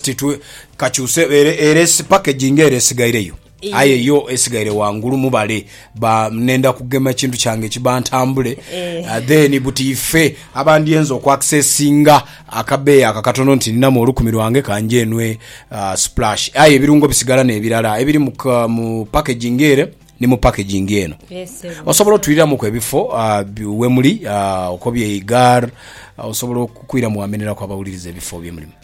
Titwe kakyuse ere ere packaging ere esigaireyo aye yo esigaire wangulu mubale ba nenda kugema ekintu kyange kiba ntambule eh. uh, then buti ife abandyenza oku accessinga akabeeyi ako akatono nti ninamu olukumi lwange kanje enwe uh, splash aye ebirungo bisigala nebirala ebiri mu, mu packaging ere ni mu packaging eno yes, osobola otwiriramuku ebifo uh, wemuli uh, okobye igar uh, osobola okwiramu wameneraku abawuliriza ebifo byemulimu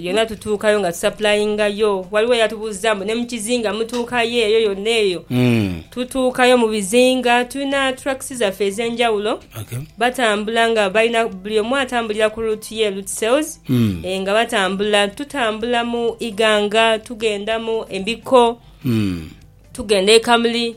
Yona tutuukayo nga tusapulaingayo. Waliwo eyatubuuzza mbu ne mu kizinga mutuukayo eyo yonna eyo? Tutuukayo mu bizinga. Tulina tracks zaffe ez'enjawulo. Batambula nga balina, buli omu atambulira ku route ye, route sales, nga batambula. Tutambula mu Iganga, tugenda mu Embikko, tugenda e Kamuli.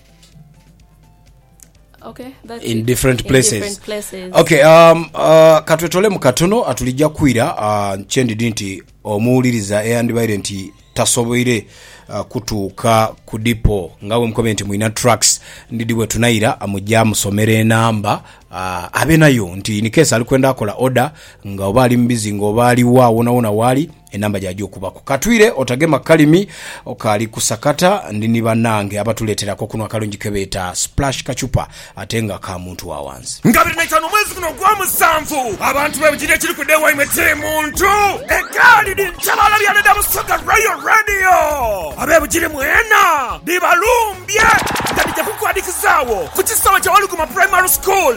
Okay, that's in it. different In places, different places. okay um, uh, katwetolemu katono atulija kwira uh, kyendidi nti omuwuliriza eyandibaire nti tasoboire uh, kutuuka ku dipo nga bwemukobe nti mwina tracks ndidi bwetunayira uh, muja musomera enamba uh, abe nayo nti inikesi ali kwenda akola order nga oba ali mubizinga oba aliwa wonawona waali Enamba jaja okubaku katwire otagema kalimi okali kusakata ndi ni banange abatuletera akokunwa akalungi kebeeta splash kacupa ate nga ka muntu wa wansi. Nga biri naitano omwezi guno ogwa musanvu, abantu bebujirire ekiri kwidha ewaimwe kiri muntu egaali dhi nkyebala byana edha Busoga Royal Radio. Abebujiri mwena dhibalumbye nga dhija kukwadhikizagho ku kisaawe kya Waluguma Primary School.